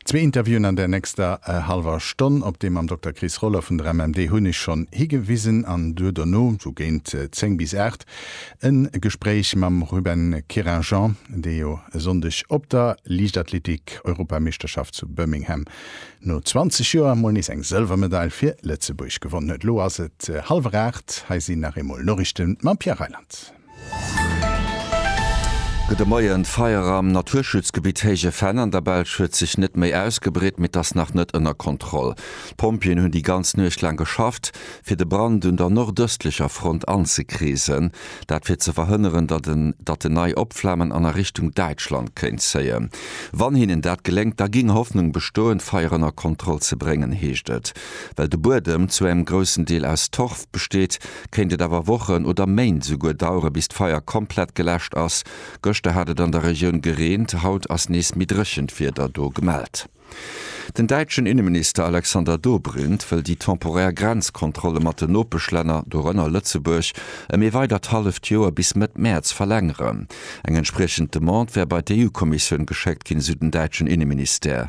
Zwee Interviewen an der nächster hallwer Stonn. Op deem mam Dokter Chris Roller vun der MMD hunn ech schonn higewisen. An duer dono, sou géint 10 bis 8, e Gespréich mam Ruben Querinjean, dee jo e Sonndeg op der Liichtathletik-Europameeschterschaft zu Birmingham no 20 Joer mol nees eng Sëlwermedail fir Lëtzebuerg gewonnen huet. Elo ass et hallwer 8, hei sinn nach eemol Noriichten mam Pierre Reyland. Gudde Moien, D'Feier am Naturschutzgebitt Héije Fenn an der Belsch huet sech net méi ausgebreet, mee et ass nach net ënner Kontroll. D'Pompjeeën hunn déi ganz Nuecht laang geschafft, fir de Brand un der nordëstlecher Front anzekreesen. Dat fir ze verhënneren, datt en nei opflamen an a Richtung Däitschland kéint zéien. Wann hinnen dat geléngt, da géing Hoffnung bestoen, d'Feier ënner Kontroll ze bréngen, heescht et. Well de Buedem zu engem groussen Deel aus Torf besteet, kéint et awer Wochen oder Méint esouguer dauere bis d'Feier komplett geläscht ass. Gëschter hat et an der Regioun gereent, haut ass nees méi dréchent Wieder do gemellt. Den däitschen Inneminister Alexander Dobrindt wëll déi temporär Grenzkontrolle mat den Nopeschlänner, dorënner Lëtzebuerg, ëm ee weidert halleft Joer bis Mëtt Mäerz verlängeren. Eng entspriechend Demande wär bei d'EU-Kommissioun geschéckt ginn, esou den däitschen Inneministère.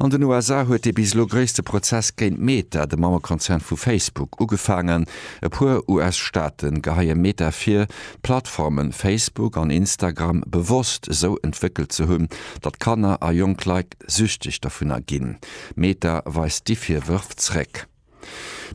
An den USA huet dee bis elo gréisste Prozess géint Meta, de Mammekonzern vu Facebook, ugefaangen. E puer US-Staate geheie Meta vir, d'Plattforme Facebook an Instagram bewosst esou entwéckelt ze hunn, datt Kanner a jonk Leit süchteg dovunner ginn. Meta weist déi Virwërf zréck.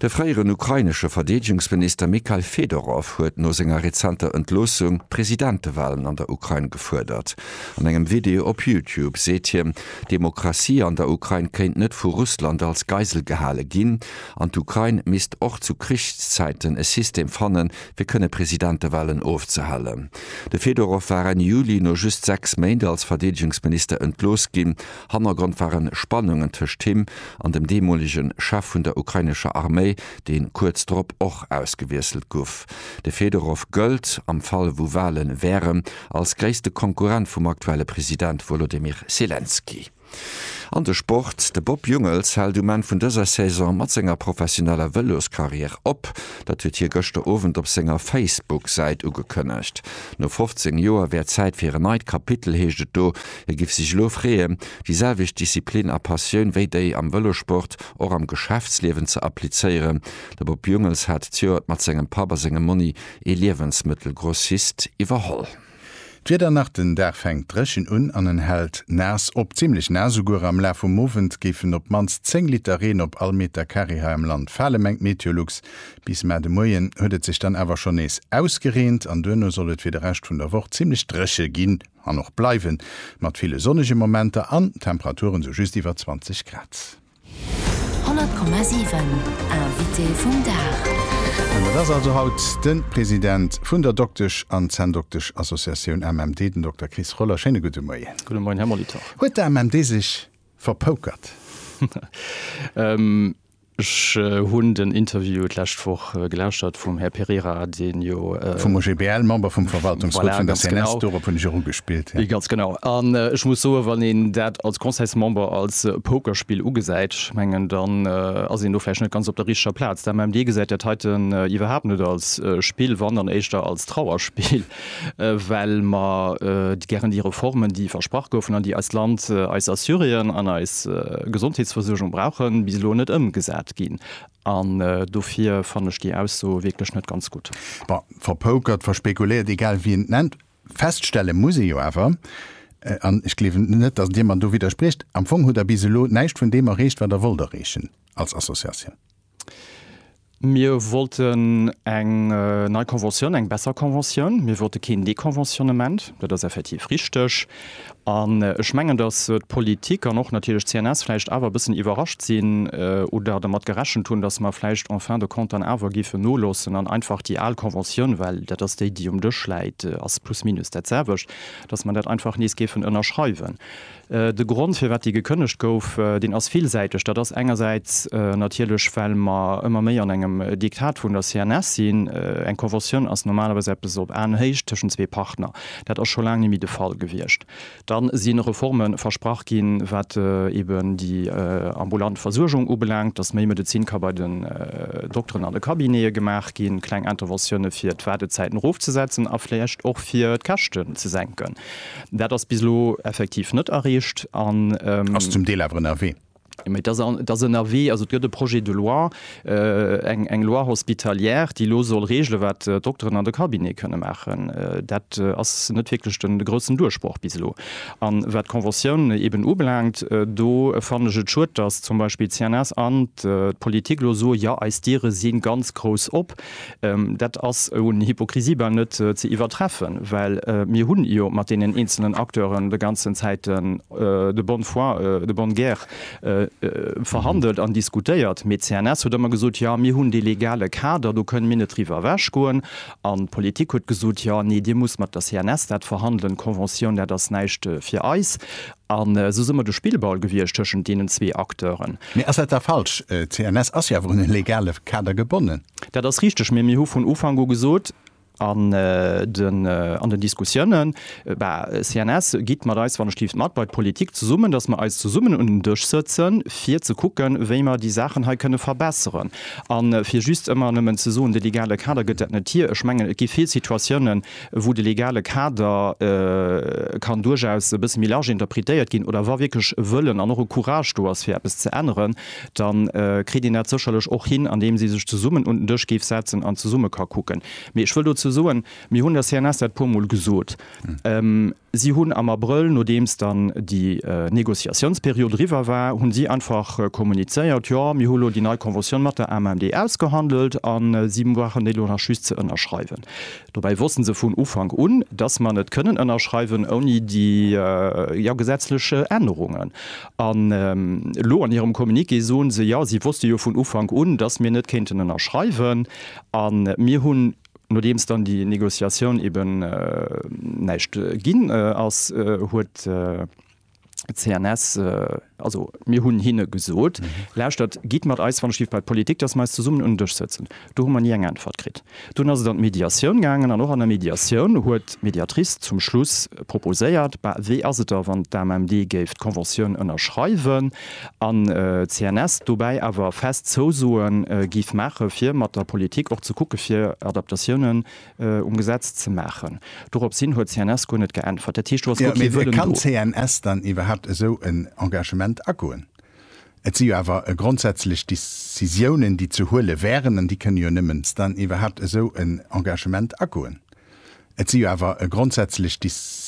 De fréieren ukrainesche Verdeedegungsminister Mikhail Fedorow huet no senger rezenter Entloossung Presidentewalen an der Ukrain gefuerdert. An engem Video op Youtube seet hien, d'Demokratie an der Ukrain kéint net vu Russland als Geisel gehale ginn an d'Ukrain misst och zu Krichszäiten e System fanne fir kënne Presidentewalen ofzehalen. De Fedorow war Enn Juli no just sechs Méint als Verdeedegungsminister entlooss ginn. Hannergrond waren Spannungen tëscht him an dem deemolege Chef vun der ukrainescher Arméi, dee kuerz drop och ausgewiesselt guff. De Fedorow gëllt, am Fall wou Wale wären, als gréisste Konkurrent vum aktuelle President Wolodymyr Selenskyj. An de Sport, De Bob Jungels hält um Enn vun dëser Saison mat senger professioneller Vëloskarriär op. Dat huet hie gëschter Owend op senger Facebook-Säit ugekënnegt. No 15 Joer wär Zäit fir en neit Kapitel, heescht et do. Hie giff sech elo freeë déi selwecht Disziplin a Passioun wéi déi am Vëlossport och am Geschäftsliewen ze applizéieren. De Bob Jungels hat d'Joert mat sengem Papp a sengem Monni ee Liewensmëttelgrossist iwwerholl. D'Wieder nach, Den Dag fänkt dréchen un an en hält naass op, zimmlech naass esouguer. Am Laf vum Owend géifen op d'mannst 10 Liter Reen op all Meter Carré hei am Land fale, mengt Meteolux. Bis mar de Moien huet et sech dann awer schonn nees ausgereent an duerno soll et fir de Rescht vun der Woch zimmlech dréche ginn. an och bleiwen, mat ville sonnege Momenter an Temperaturen sou just iwwer 20 Grad. 100,7 Invité vum Dag. An dat ass also haut de President vun der Doktesch an Zänndokteschassociatioun MMD, den Dokter Chris Roller. Schéine gudde Moien. Gudde Moien, Här Molitor. Huet d'MMD sech verpoukert? Ech hunn den Interview d'lescht Woch gelauschtert vum Här Pereira, deen jo. Vum OGBL, Member vum Verwaltungsrot vun der CNS, dorop hunn ech och ugespillt. Voilà, ganz genau. Ganz genau. An ech muss soen, wann een dat als Conseilsmember als Pokerspill ugesäit, ech mengen, dann ass een do vläicht net ganz op der richteger Plaz. D'AMMD gesäit dat heiten iwwerhaapt net als Spill, wann, dann éischter als Trauerspill. well mer gären déi Reformen, déi versprach goufen an déi eist Land, eis Assurien an eis Gesondheetsversuergung brauchen, bis elo net ëmgesat ginn. An dofir fannen ech déi Ausso wierklech net ganz gutt. Bon, verpoukert, verspekuléiert, egal wéi een et nennt, feststelle muss ee jo awer, an ech gleewen net, datt Dir mer do widdersprécht, Am Fong hutt Der bis elo näischt vun deem erreecht, wat Der wollt erreechen als Associatioun. Mir wollten eng nei Conventioun, eng besser Conventioun. Mir wollte keen Deconventionnement, dat ass effektiv richteg. An ech mengen, datt d'Politik an och natierlech d'CNS vläicht awer e bëssen iwwerrascht sinn oder dermat gerechent hunn, datt mer vläicht en fin de compte dann awer géifen noloossen an einfach déi al Conventioun, well dat ass déi, déi um Dësch läit, ass plus minus dat selwecht, datt mer dat einfach nees géifen ënnerschreiwen. De Grond, firwat déi gekënnegt gouf, deen ass villsäiteg. Dat ass engersäits natierlech, well mer ëmmer méi an engem Diktat vun der CNS sinn. Eng Conventioun ass normalerweis eppes op Aenhéicht tëschent zwee Partner. Dat ass scho laang nimmi de Fall gewiescht. Dann si Reforme versprach ginn, wat eben déi ambulant Versuergung ubelaangt, dass méi Medezin ka bei den Dokteren an de Cabinete gemaach ginn, kleng Interventiounen, fir d'Waardezäiten erofzesetzen a vläicht och fir d'Käschten ze senken. Dat ass bis elo effektiv net erreecht. Ass zum Deel awer ënnerwee. Mee et ass ënnerwee. Also et gëtt e Projet de loi, eng Loi hospitalière, déi elo soll reegelen, wat d'Dokteren an de Cabinete kënne maachen. Dat ass net wierklech de groussen Duerchbroch bis elo. A wat d'Conventiounen eeben ubelaangt, do fannen ech et schued, datt zum Beispill d'CNS an d'Politik elo soen, Jo, eis Diere si ganz grouss op. Dat ass un Hypokrisie bal net ze iwwertreffen, well mir hu jo mat deenen eenzelnen Acteuren de ganzen Zäiten de bonne foi, de bonne guerre verhandelt an diskutéiert. Mee d'CNS huet ëmmer gesot, Jo, mir hunn dee legale Kader, do kënne mir net driwwer ewechgoen. An d'Politik huet gesot, Jo, nee, Dir musst mat der CNS dat verhandelen, d'Conventioun, dat ass näischt fir eis. An esou si mer de Spillball gewiescht tëschent deenen zwee Acteuren. Mee ass dat da falsch? CNS ass jo awer un e legale Kader gebonnen. Dat ass richteg, mee mir hu vun Ufank u gesot an den Diskussiounen, CNS, gitt mat eis, wann ech dierf, mat bei d'Politik zesummen, datt mer eis zesummen un en Dësch sëtzen, fir ze kucken, wéi mer déi Saachen hei kënne verbesseren. A fir just ëmmer nëmmen ze soen, de legale Kader gëtt dat net hir, ech mengen, et gi vill Situatiounen, wou de legale Kader kann duerchaus e bësse méi large interpretéiert ginn, oder wa wierklech e Wëllen an och e Courage do ass fir eppes ze änneren, da kritt een dat sécherlech och hin, andeems ee sech zesummen un den Dësch géif setzen an zesumme ka kucken. Mee ech wëll dozou soen, mir hunn der CNS dat e puer Mol gesot, Si hunn am Abrëll, nodeems dann déi Négociatiounsperiod eriwwer war, hunn si einfach kommunizéiert, jo, mir hu lo déi nei Conventioun mat der AMMD ausgehandelt a si brauchen déi lo nach just ze ënnerschreiwen. Dobäi wosste se vun Ufank un, dass mer net kënnen ënnerschreiwen ouni déi, jo, gesetzlech Ännerungen. An elo an hirem Communiqué soen se, jo, si wosste jo vun Ufank un, dass mir net kéinten ënnerschreiwen a mir hunn, Nodeems dann déi Negociatioun eben näischt ginn ass, huet d'CNS, also mir hunn hinne gesot, Lauschtert, gitt mat eis, wann ech giff bei d'Politik, dass mer eis zesummen un den Dësch sëtzen. Do hu mer ni eng Äntwert kritt. Dunn ass et an d'Mediatioun gaangen an och an der Mediatioun huet d'Mediatrice zum Schluss proposéiert, Bah, wéi ass et da, wann d'AMMD géif d'Conventioun ënnerschreiwen? an CNS dobäi awer fest Zousoen giff maachen fir mat der Politik och ze kucken fir Adaptatiounen um Gesetz ze maachen. Dorops hin huet CNS guer net geäntwert. Dat heescht do ass guer kee Wëllen do. Mee wéi kann CNS dann iwwerhaapt esou en Engagement agoen? Et si jo awer grondsätzlech Decisiounen déi ze huele wären an déi kënne jo nëmmens dann iwwerhaapt esou en Engagement agoen. Et si jo awer grondsätzlech.